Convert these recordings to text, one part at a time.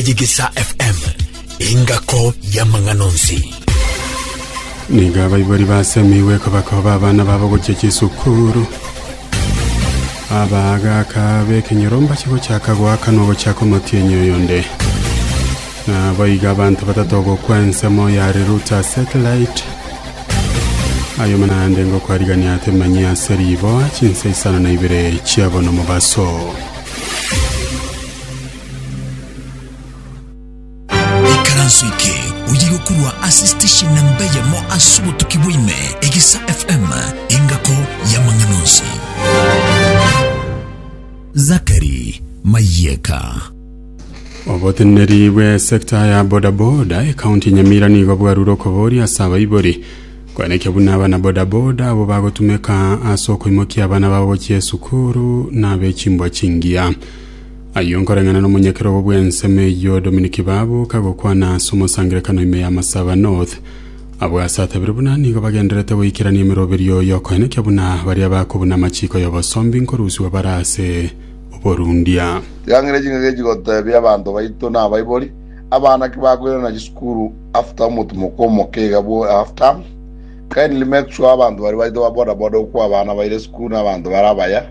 Ejigisa FM, engako y'amang'ana onsi. nigo abaibori basemigwe kobakoba abana babo gochia chisukuru abagaka b'ekenyoro mbache gochaka goaka na ogochaka omotienyi oyonde nabo iga abanto batato gokwa ensemo ya reruta satellite ayo manande ngokwarigania atemanyi ase riboa chinsa isano na ibere chiabono mobaso Ikaranso eke oye gokorwa ase station namba eyemo ase obotuki bwaime, Egesa FM, engako y'amang'ana onsi. Zakari Mayeka. Oboteneneri bwe sector ya bodaboda ekaunti ya Nyamira nigo bwarure okoboria ase abaibori kwanekio buna abana bodaboda abo bagotumeka ase okoimokia abana babo gochia esukuru na abechimbwa chingiya. Ayio nkoreng'ana nomonyakerogo bw'ensemo eyio Dominiki babuka gokwana ase omosangererekano ime ya Masaba North. Abwo ase atabire buna nigo bagendererete goikerania emeroberio y'okoenekia buna baria bakobuna amachiko y'obosombi nkorusiwa bare ase oborundia. Tiang'ina ching'ake echi gotebia abanto baito na abaibori, abana ki bakoirana chisukuru after omotumoko omoke iga bwo half term. Kindly make sure abanto baria baito ba bodaboda okwa abana baire esukuru na abanto bare abaya.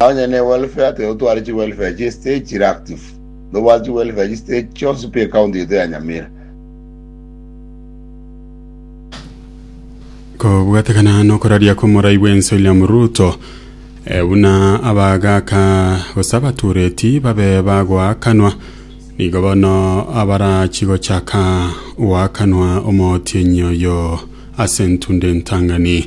Onye ne welfare tiga otware chi welfare chie state chire active. Nobwate chi welfare chie state chionsi pi ecounty yaito ya Nyamira. Kobwatekana nokoraria komorai bwensi William Ruto eh, buna abagaka gose abatureti babe bagoakanwa nigo bono abarachi gochaka goakanwa omotienyi oyo ase ntunde ntangani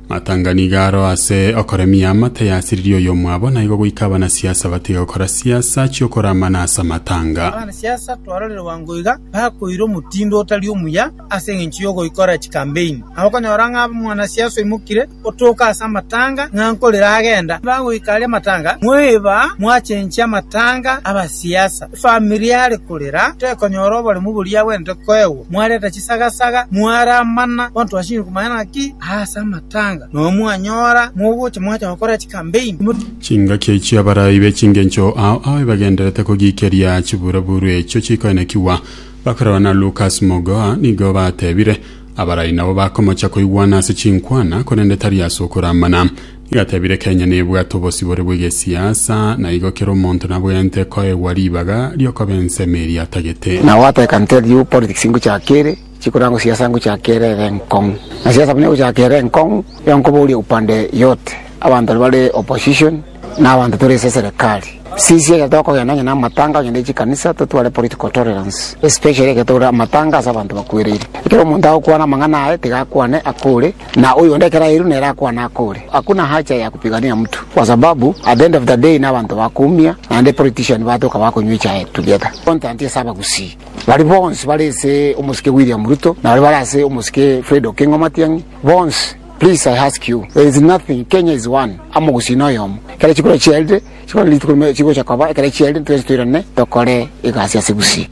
Matanga nigo aro ase okoremia amate yasiririe oyomwabo, naigo goika abanasiasa batiga gokora siasa chi'okoramana ase amatanga. Abanasiasa twarorerwa ngoiga bakoira omotindo otari omuya ase engencho y'ogoikora chikambeini. Na okonyora ng'a omwanasiasa oimokire otoka ase amatanga ng'a nkorire agenda, nigo agoika aria amatanga, mwaeba mwachenchia amatanga 'abasiasa. Efamiri are korera tekonyora oboremu boria agwenerete koegwa. Mwareta chisagasaga, mwaramana kontwashinigwa maene naki aase amatanga, na oyo mwanyora mogocha mwacha gokora chikambeini, Chingaki echio abarai be chingencho ao ao ebagenderete kogiikeria chibura-buru echio chikoinekigwa, bakorerwa na Lukas Mogoa, nigo batebire, Abarai nabo bakomocha koigwana ase chinkwana, korende tari ase okoramana. Igatebire Kenya nebwate obosibore bw'egesiasa na igo kera omonto nabwenerete koegwa ribaga riokoba ensemo eria atagete. Nao agataka nte at you politics ingochaka ere chikorangwa siasa ngochaka ere ere enkong'u na siasa buna egochaka ere enkong'u igo nkoboria upande yote abanto bare opposition na abanto tore ase eserekari sisi ekero tokogenda onye na amatanga onye ne chikanisa totware political tolerance especially ekero tore amatanga ase abanto bakwereire ekero omonto agokwana amang'ana aye tiga akwane akore. Na oyonde ekero airwe nere akwane akore, hakuna hacha ya kupigania mtu, kwa sababu at the end of the day nabanto bakumia naende politician batoka bakonywa echae together. Contant ase abagusii baria bonsi bare ase omosike William Ruto na baria bare ase omosike Fred Okengo Matiang'i bonsi please I ask you there is nothing Kenya is one amogusii noyomo ekero chikura chiarire chikore rituko rime chigocha koba ekero chiarire twensi toirane tokore egasi ase gusii.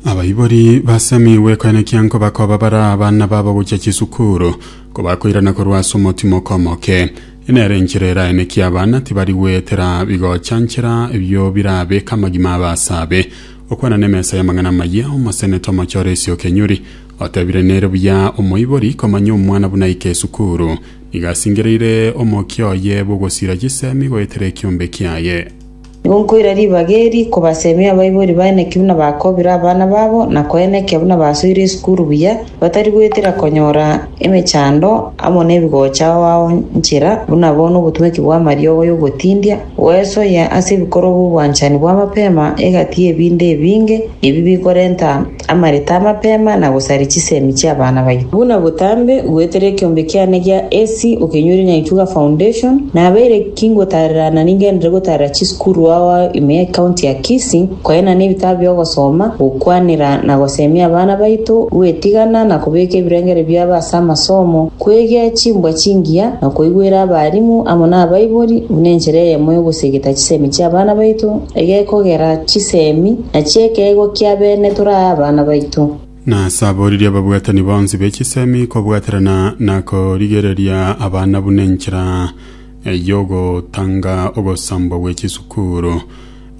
Abaibori basemi gwekanekia nkoba koba bara abana babo gochia chisukuru, kobakoirana korwa ase omotima okomoke. Eye nere enchera eraye naki abana tibari goetera bigochanchera ebio birabeke amagima abe ase abe. Okwana nemesa y'amang'ana amayia, Omosenete omochore esio Kenyuri, otebire nere buya omoibori komanya omwana buna aike esukuru, nigo asingereire omokia oye bw'ogosira chisemi goetera ekiombe kiaye. Gonkoira ribaga eri kobasemia abaibori baye naki buna bakobire abana babo na koenekia buna basoire esukuru buya, batari goetera konyora emechando amo nebigocha ao ao nchera, buna bono obotumeki bw'amariogo y'ogotindia goesoyia ase ebikorwa bw'obwanchani bw'amapema egati y'ebinto ebinge, ebi bikorenta amareta amapema na gosaria chisemi chi'abana baito. Buna botambe, goetera ekeombe kiane gia AC okenyoire Nyaituga Foundation, nabeire ki ngotarerana ningenderere gotarera chisukuru ao ao ime ya County ya Kisii, koenana ebitabu bi'ogosoma, gokwanera na gosemia abana baito, gwetigana na kobeka ebirengeri biabo ase amasomo, kwegea chimbwa chingiya, na koigwera abarimu amo nabaibori buna enchera eyemo y'ogosegeta chisemi chi'abana baito egekogera chisemi. Na chi'ekeegwa kia beene torae abana baito. Nasaboririe ababwatani bonsi be chisemi kobwaterana na korigereria abana buna enchera y'ogotanga ogosambwa gwe chisukuru.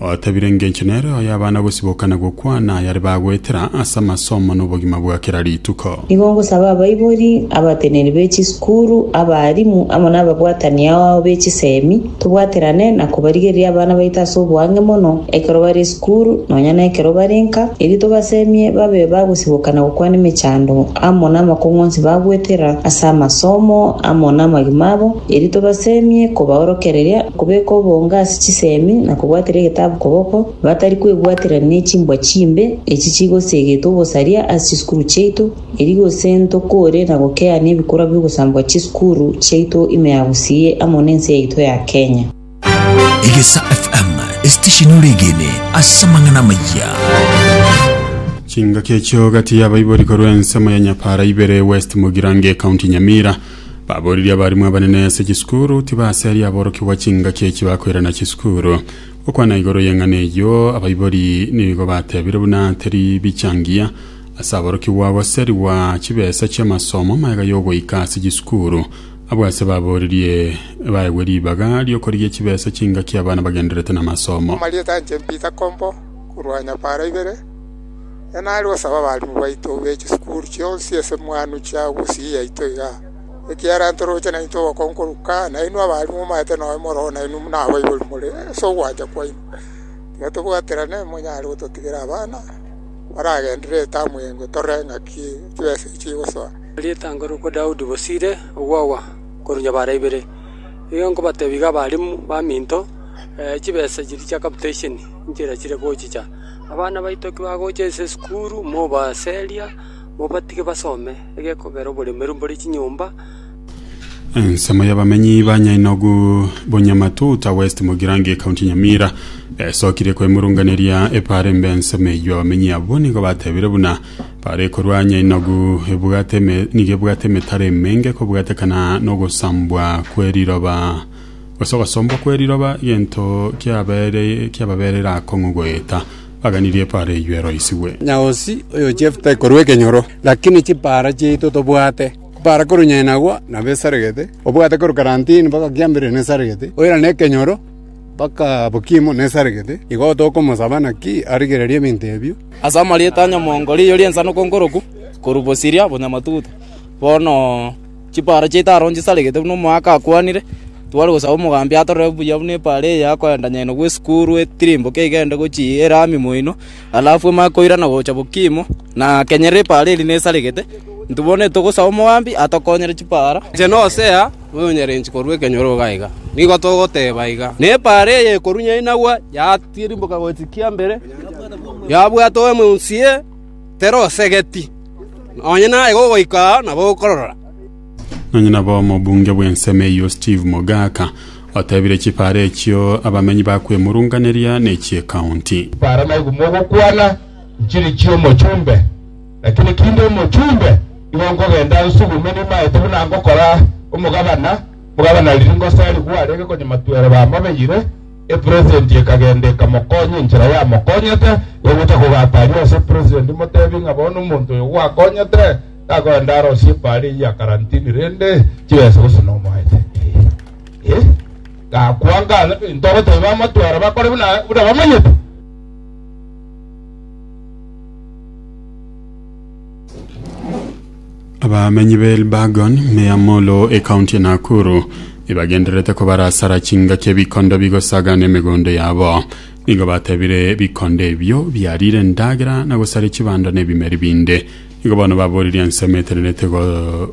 Otebire engencho nere oyo abana gosiboka na gokwana ayare bagoetera ase amasomo na obogima bwa kera rituko. Nigo ngosaba abaibori, abateneri be chisukuru, abaalimu, amo n'ababwatani ao be chisemi, tobwaterane na kobarigereria abana baito ase oboange mono ekero bare esukuru, nonya nekero bare nka, erio tobasemie babe bagosiboka na gokwana emechando amo namakong'u onsi bagwetera ase amasomo amo namagima abo, erio tobasemie kobaorokereria kobeka obonge ase chisemi na kobwatera egetabu koboko, Batari kwebwatera ne chimbwa chimbe echi chigoseegeta obosaria ase chisukuru chiaito, erio gose ntokore na gokea nebikorwa bi'ogosambwa chisukuru chiaito ime ya Gusii amo nense yaito ya Kenya. Egesa FM, esitesheni oregene ase amang'ana amayia. Chingaki echio gati y'abaibori korwa ensemo ya Nyapara ibere West Mugirange County Nyamira baboririe abarimu abanene ase chisukuru tibaseria aborokigwa chingaki echi bakoirana chisukuru Gokwana igoro y'eng'ana eyio abaibori nigo batebire buna teri bicha ngiya ase aborokigwa goserigwa chibesa chi'amasomo maega y'ogoika ase chisukuru. Abwo ase baborerie baegwe ribaga ri'okorigia chibesa chingaki abana bagendererete namasomo. Amarieta a inche Peter Kombo korwa Nyapara ibere, nere nare gosaba abalimu baito be chisukuru chionsi ase mwanwe chia gusii yaito igaa. Ekiagera ntoroche naintwe obokongoruka, nainwe abaaria momaete noyo moroo nainwe buna abaibori more ase ogwancha kwaino. Tiga tobwaterane monyare gototigera abana baragenderere etamu y'engwe torore ng'aki chibesa echi chigosoa. Rietang'o rokwa Daudi bosire ogwagwa korwa nyabara ibere. Nigo nkobatebia iga abarimu baminto, chibesa chiria chia capitation nchera chire gochicha. Abana baito ki bagocha ase esukuru mobaseria. Mobatige basome egekogera oboremeru mbore chinyomba. Ensemo y'abamenyi ba Nyainogu, Bunyamatuta West, Mugirango, County Nyamira, esokirie kwemurunganeria epara embe ensemo eyio. Abamenyi abwo nigo batebire buna para ekorwa Nyainogu ebwate eme- nigo ebwate emetaro emenge kobwatekana n'ogosambwa kw'eriroba gose ogosombwa kw'eriroba, egento kiabere- kiababerera akong'u goeta. aganirie epaara eyio eroisigwe. Nyaosi oyo Jefta ekorua ekenyoro, lakini chipaara chiaito tobwate. Kupaara korwa inyae nagwo nabo esaregete, obwate korwa karantini mpaka kiambere nesaregete, oira nekenyoro mpaka bokimo nesaregete. Igo tokomosaba naki arigererie ebinto ebio. Ase amarieta a nyamongo riiyo ri'ensanoko nkoroku, korwa bosiria bonyamatuta, bono. Chipaaro chiaito aro nchisaregete buna omoaka akwanire, tware gosaba omogambi atorere buya buna epaaro eye yakoenda nyaino gw'esukuru etirimboke egende gochia erami moino, alafu emanye koirana gocha bokimo, na kenyerera epaaro eria nesaregete. Intwe bono togosaba omogambi atokonyere chipaaro. Inche na Hosea, oyonyarenchwe korwa ekenyoro iga iga, nigo togoteba iga, Nepaaro eye ekorwa nyainagwa, yatirimboka gochia kiambere, yabwatwa owe monsie, terosegeti, nonya naye gogoika aa nabo okorora.” Nonya nabo omobunge bw'ensemo eyio Steve Mogaka otebire chipara echio abamenyi bakwemurunganeria nechi'ekaunti. Chipara naigwa mogokwana nchiri chi'omochumbe, lakini kinde omochumbe igo nkogenda nsugume nimaete buna ngokora omogabana, omogabana riria ngoserigwe arenge konyamatwera bamabeyire Epresident ekagenda ekamokonya enchera yamokonyete, egocha kogata aria ase epresident emotebie ng'a bono omonto oyo gwakonyete takoenda arosie paara eyio ya karantini rende chibesa gose nomoete. Eh, eh, gakwa ng'ana ebinto ogoteba bamatwara bakore buna buna bamanyete. abamenyi ba elbagon me ya molo ekaunti ya nakuru ibagendererete kobarasara chingaki ebikondo bigosagana emegondo yabo nigo batebire bikondo ebio biarire endagera na gosara chibando na ebimeri binde nigo bono baboririe ensemo etenerete go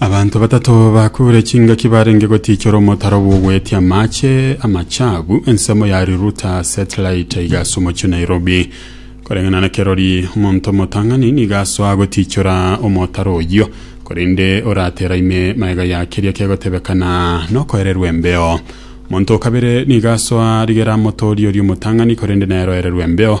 Abanto batato bakure chingaki barenge gotichora omotaro bw'ogwetia amache amachabu ensemo ya Riruta Satellite igasa omochio Nairobi koreng'ana na kerori omonto omotang'ani nigo asoa gotichora omotaro oyio korende oratera ime maega ya keria kegotebekana nokoererwa embeo omonto okabere nigo asoa rigera motori oria omotang'ani korende nere oererwa embeo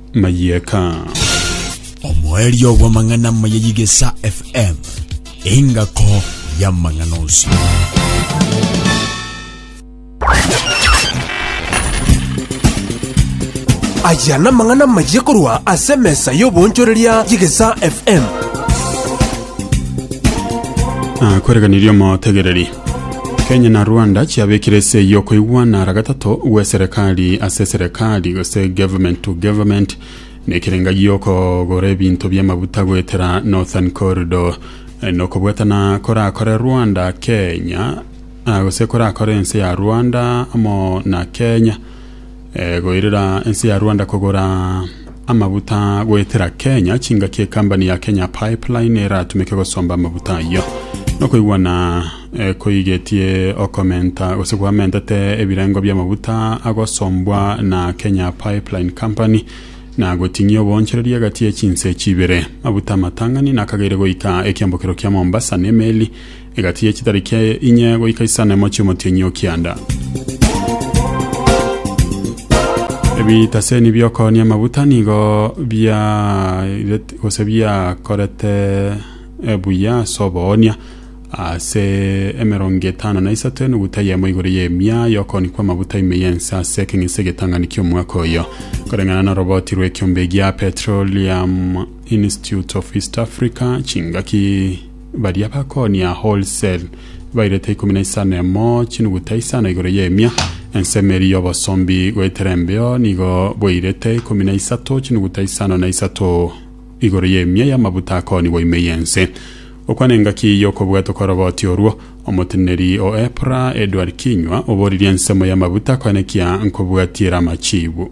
mayieka. Omoerio bw'amang'ana maya y'Igesa FM, engako y'amang'ana onsi. Aya namang'ana mayiya korwa ase emesa y'oboonchoreria y'Igesa FM. Akwereganirie omotegereri. Kenya na Rwanda chiabekire ase y'okoigwana ara gatato gw'eserekari ase eserekari gose government to government nekerenga gi'okogora ebinto bi'amaguta goetera Northern Corridor Eh, nokobwatana korakore Rwanda Kenya ah, gose korakore ense ya Rwanda amo na Kenya Goirera ense ya Rwanda kogora amabuta goetera Kenya, chingaki ekambani ya Kenya Pipeline eratumeke gosomba amabuta ayio. Nokoigwana eh, koigetie okomenta gose kwamentete ebirengo bi'amabuta agosombwa na Kenya Pipeline Company na goting'ia obonchereri egati ye chinse echi ibere. Mabuta amatang'ani nakageire goika ekiambokero kia Mombasa nemeli Egati ye chitari kia inye goika isanemo chi'omotienyi o kianda. Ebitaseni bi'okonia amaguta nigo biairete gose biakorete eh, buya ase oboonia ase emerongo etano na isato enuguta eyemo igoro y'emia y'okooni kw'amaguta ime y'ense ase ekeng'ese egetang'ani ki'omwaka oyo koreng'ana noroboti rw'ekiombe gia Petroleum Institute of East Africa chingaki Baria bakonia wholesale bairete ikomi na isano emo chinuguta isano igoro y'emia, ensemo eria y'obosombi goetera embeo nigo bwairete ikomi na isato chinuguta isano na isato igoro y'emia y'amabuta akoonigwa ime y'ense. Gokwana engaki y'okobwatwa kw'oroboti orwo, omoteneneri o EPRA Edward Kinyua oboririe ensemo y'amabuta koenekia nkobwatiera amachiibu.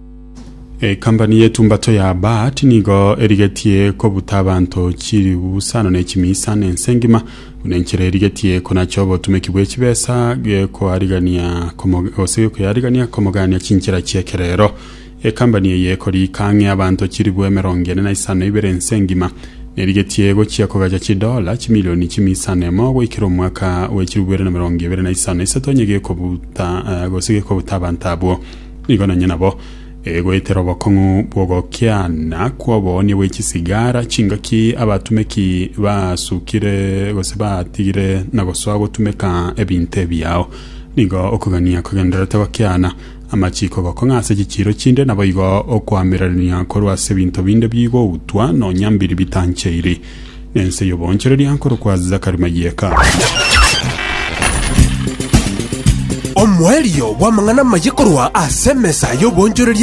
Ekampani y'etumbato ya Baat nigo erigetie kobuta abanto chiribuusano ne chimiisano ense engima buna enchera erigetie konacha obotumeki bw'echibesa gekoarigania komo- gose gekoyarigania komogania chinchera chi'ekerero. Ekampani eye ekoriika ang'e abanto chiribu emerongo ene na isano ibere ense engima nerigetie gochia kogacha chidola chimilioni chimiisano emo goikera omwaka bw'echiribu bibere na emerongo ebere na isano isato onye gekobuta eh, gose gekobuta abanto abwo. Nigo nonye nabo egoetera obokong'u bw'ogokiana kw'oboonia bwe chisigara chingaki abatumeki basukire gose batigire na gosoa gotumeka ebinto ebiao. Nigo okogania kogendererete gokiana amachiko gokong'a ase chichiiro chinde naboigo okoamererania korwa ase ebinto binde bigoutwa nonya mbiri bitancheiri. Nense y'oboonchoreria nkorokwa Zachary Mayeka. Omoerio bw'amang'ana amaye korwa ase emesa y'oboonchoreria.